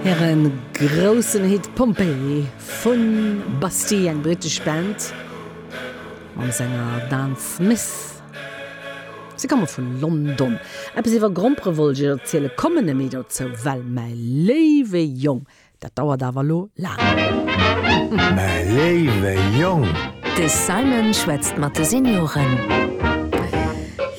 Hire groussen Hit Pompeii vu Bastille, eng brittesch Band mam Sänger Dan Smith. Si komme vu London. Eppes iwwer Grompere wollt ech iech erzielen, kommen net méi dozou, well mäi léiwe Jong, dat dauert awer elo laang. Mäi léiwe Jong! De Simon schwätzt mat de Senioren.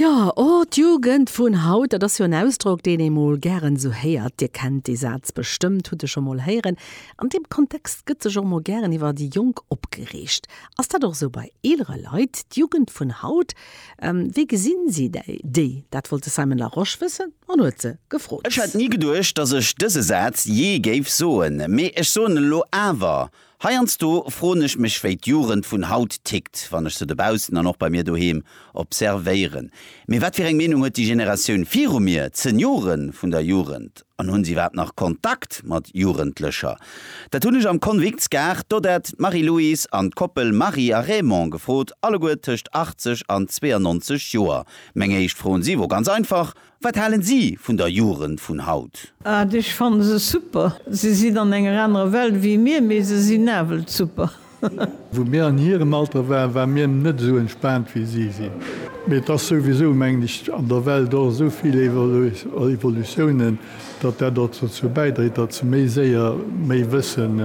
Jo, o, d'Jugend vun haut, dat ass jo en Ausdrock, deen ee mol gären esou héiert. Dir kennt dee Saz bestëmmt, hutt e scho mol héieren. An deem Kontext gëtt sech och mol gären iwwer déi Jonk opgereegt. Ass dat och esou bei eelere Leit, d'Jugend vun haut? Wéi gesinn si déi? Dat wollt de Simon Larosche wëssen an huet se gefrot. Ech hätt ni geduecht, datt ech dëse Saz jee géif soen, mee ech soen e lo awer. Heiansdo froen ech mech wéi d'Jugend vun haut tickt, wann ech se dobaussen an och bei mir doheem observéieren. Mee wat fir eng Meenung huet déi Generatioun viru mir, d'Seniore vun der Jugend? An hunn se iwwerhaapt nach Kontakt mat Jugendlecher? Dat hunn ech am Convicts Gard d'Odette, d'Marie-Louise an d'Koppel Marie a Raymond gefrot, alleguer tëscht 80 an 92 Joer. Meng éischt Fro un si wor ganz einfach, Wat halen si vun der Jugend vun haut? Ad, Ech fannen se super. Se sinn an enger anerer Welt wéi mir, mee se sinn nawell super. Wou mir an hirem Alter waren, ware mir net esou entspaant wéi si sinn. Mee et ass souwisou, mengen ech, an der Welt och esou vill Evolutiounen, datt dat och dozou bäidréit, datt se méi séier méi wëssen,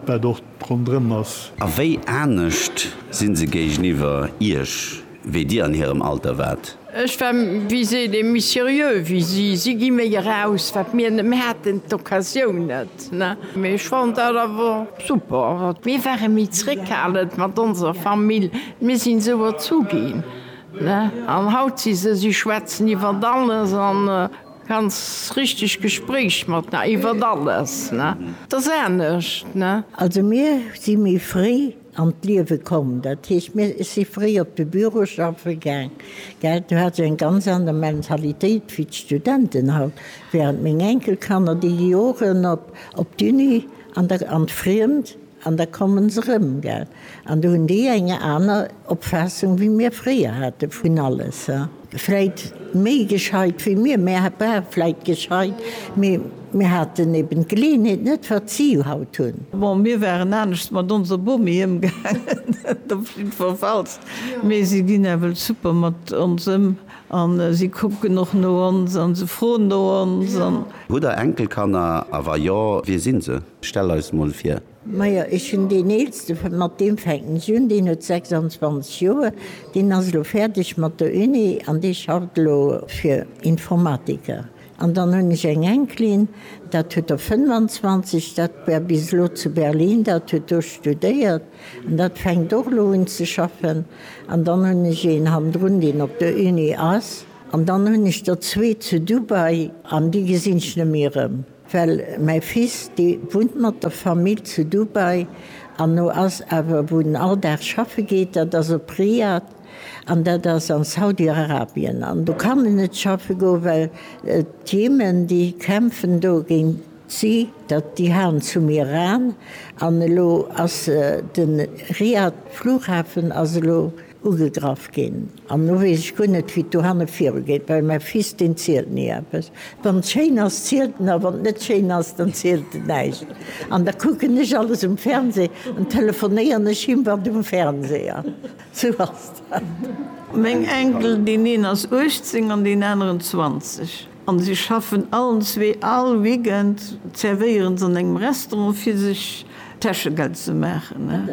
wat och ronderëm ass. A wéi anescht si se géigeniwwer Iech? wéi dir an hirem Alter waart. Ech war, wéi seet ee, méi seriö wéi si. Si gi méi eraus, wat mir net méi haten, d'Occasioun net. Mee ech fand dat awer super. Mir ware méi zréckhalend mat onser Famill, mir sinn esou erzu ginn. An haut si se, si schwätzen iwwert alles a ganz richteg Gespréich mat, iwwert alles. Dat ass anescht. Also mir si méi fréi. an d'Liewe komm. Dat heescht, mir, ech si fréi op de Büro schaffe gaang, gell, do hat se eng ganz aner Mentalitéit wéi d'Studenten haut. Während meng Enkelkanner, déi gi och erën op, op d'Uni an der, an d'Friemt an da komme se erëm, gell. An do hunn déi eng aner Opfaassung wéi mir fréier hate vun alles, he. Vläit méi gescheit wéi mir, mir ware vläit gescheit, mee mir haten eben d'Geleeënheet net, wat si haut hunn. Bon, mir waren anescht mat onser Bomi ëmgaangen, dat op jiddwerfalls, mee si ginn nawell super mat ons ëm a si kucken och no ons a se froen no ons. Hutt Der Enkelkanner, a wa jo, wie si se? Stell eis mol vir. Majo, ech hunn deen Eelste, mat deem fänken ech un, deen huet 26 Joer, deen ass elo fäerdeg mat der Uni an dee schafft elo fir Informatiker. An dann hunn ech eng Enkelin, dat huet der 25, dat war bis elo zu Berlin, dat huet do studéiert an dat fänkt och elo un ze schaffen. An dann hunn ech een hannendrun, deen op der Uni ass. An dann hunn ech der zwee zu Dubai an déi gesinn ech net méi erëm. Well mäi Fils, dee wunnt mat der Famill zu Dubai an no ass awer, wou en all Dag schaffe geet, dat ass op Riyadh an dat ass an Saudi-Arabien. An do kann en net schaffe goen, well d'Jemen, déi kämpfen do géint si, dat déi haen zum Iran an elo ass de Riyadh-Flughafen ass elo Ugegraff ginn, an lo weess ech guer net, wéi et dohanne virugeet, well mäi Fils, deen zielt ni eppes. Wann et schéin ass, zielt en, a wann et net schéin ass, dann zielt en näischt. An da kucken ech alles um Fernseh an telefonéieren ech him, wat um Fernseh ass. Sou ass dat. Meng Enkel, deen een ass 18 an deen aneren 20. An si schaffen allen zwee. All Weekend zerwéieren s'an engem Restaurant fir sech Täschegeld ze maachen.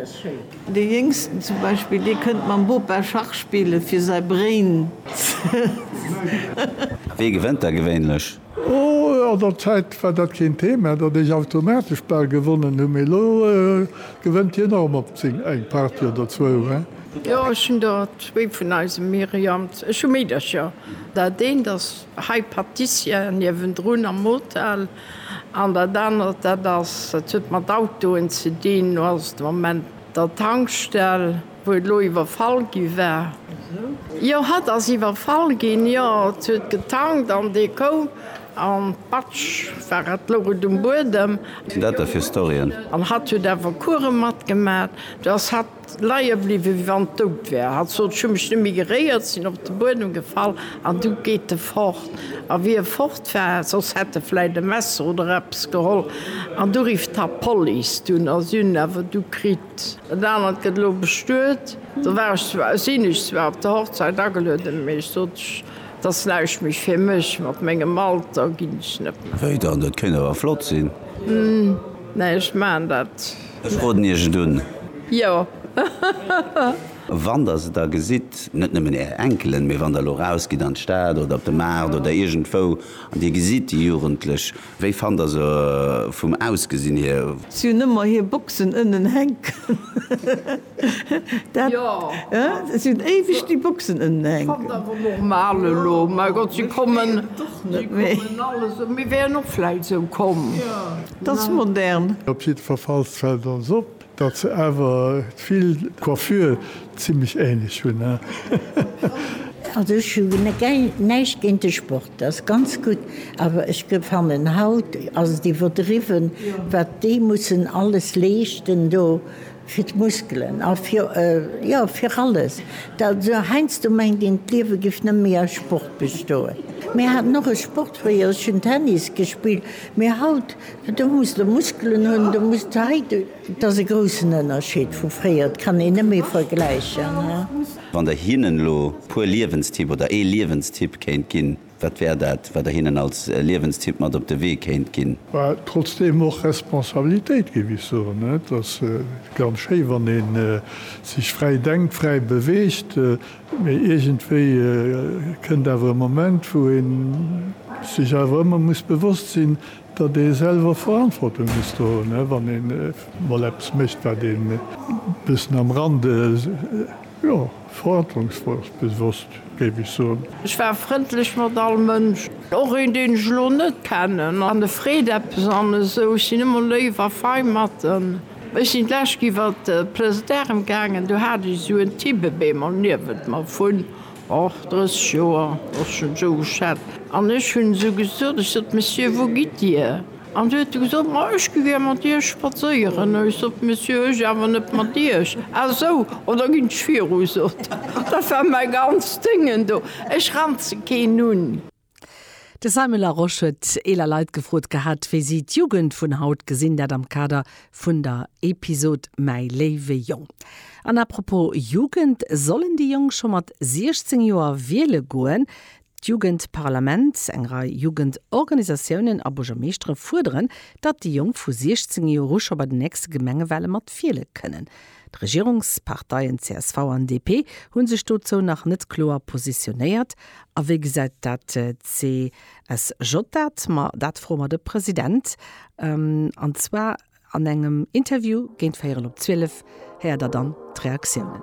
De Jéngsten zum Beispill, dee kënnt mam Bopa Schach spille fir säi Brain ze. A wee gewënnt da gewéinlech? Oh, an der Zäit war dat keen Thema, datt ech automatesch bal gewonnen hunn, mee elo gewënnt hien och mol zéng, eng Partie oder zwou. Jo, ech hunn der zwee vun eisem Myriam. Ech hu Meedercher. Dat eent ass hei Patissière niewendrun am Hotel an dat anert, dat ass, dat huet mat Autoen ze dinn, do ass et de Moment der Tankstell, wou et elo iwwerfall gi war. Jo, hatt ass iwwerfall ginn, jo, et huet getankt an dee koum an patsch war et, louch et um Buedem. Wat sinn dat da fir Storyen? An hatt huet awer Course matgemat, do ass hatt Leie bliwwen, wéi wann et dout wär. Hatt sot, Ech hu mech net méi geréiert, sinn op de Buedem gefall an du geet e fort. A wéi e fort war, soss hätt e vläit e Messer oder eppes geholl, an du rifft hatt d'Police. Dunn ass un, awer du kritt. Dat anert gëtt elo bestuet. Do war ech zwar, sinn ech zwar op der Hochzäit agelueden, mee ech sot, Et ass näischt méi fir mech, mat mengem Alter ginn ech net méi. Wéi dann, dat kéint awer flott sinn? Hm, mä ech maachen dat. Ech roden iech et un. Jo. Wann der se da gesitt, net nëmmen är Enkelen, mee wann der elo rausgitt an d'Stad oder op de Maart oder iergendwou an dir gesitt déi Jugendlech, wéi fannt der se vum Ausgesinn hier? Si hunn ëmmer hir Boxen ënnen hänken. Dat, jo, si hunn éiweg déi Boxen ënnen hänken. Fannt awer normal elo. Mäi Gott, si kommen, si kommen alles, mir wären och vläit esou komm. T'ass modern. Op jiddferfalls fällt ons op, datt se awer vill d'Coiffure zimmlech ähnlech hunn, hein? Also ech hu näischt géint de Sport, dat ass ganz gutt, awer ech fannen haut ass et iwwerdriwwen wat déi mussen alles leeschten do. Fir d'Muskelen a fir, jo, fir alles. Also heiansdo mengt een, d'Liewe géif net méi aus Sport bestoen. Mir haten och e Sport fréier, ech hunn Tennis gespillt, mee haut, do muss de Muskelen hunn, do muss de hei, et ass e groussen Ënnerscheed vu fréier, et kann een net méi vergläichen. Wann Der hinnen elo e puer Liewenstipp oder ee Liewenstipp kéint ginn? Wat wär dat, wat Der hinnen als Liewenstipp mat op de Wee kéint ginn? Well trotzdeem och Responsabilitéit, géif ech soen. Et ass ganz schéi, wann ee sech fräi denkt, fräi beweegt, mee iergendwéi kënnt awer e Moment, wou ee sech awer ëmmer muss bewosst sinn, datt ee selwer Verantwortung muss do hunn, wann ee mol eppes mécht, wat ee e bëssen am Rande, jo. Verantwortungsbewosst, géif ech soen. Ech war frëndlech mat all Mënsch. Och een, deen ech elo net kennen an e freet eppes an esou. Ech sinn ëmmer léif a fei mat en. Ech sinn d'lescht iwwer d'Place d'Armes gaangen. Do hat ech esou en Tibbebeemer niewent mer vun, och, 30 Joer, och schonn esou geschat. An ech hunn esou gesot, ech sot, Monsieur, wou gitt Dir? An si huet gesot, Ma ech gi gär mat iech spadséieren. Ech sot, Monsieur, ech awer net mat iech. A sou, oh, da ginn ech viru, sot en. Dat war mäi ganzt Déngen do. Ech ranze keen un. De Simon Larosche huet eeler Leit gefrot gehat, wéi si d'Jugend vun haut gesinn, dat am Kader vun der Episod Mäi léiwe Jong. An apropos Jugend, Sollen déi Jonk scho mat 16 Joer wiele goen? D'Jugendparlament, eng Rei Jugendorganisatiounen a Buergermeeschtere fuerderen, datt déi Jonk vu 16 Joer u scho bei den nächste Gemengewale mat wiele kënnen. D'Regierungsparteien csv an DP hu sech dozou nach net kloer positionéiert. A wéi gesäit dat d'CSJ dat? Ma dat froe mer de President. An zwar an engem Interview géint véierel op 12 héiert der dann d'Reaktiounen.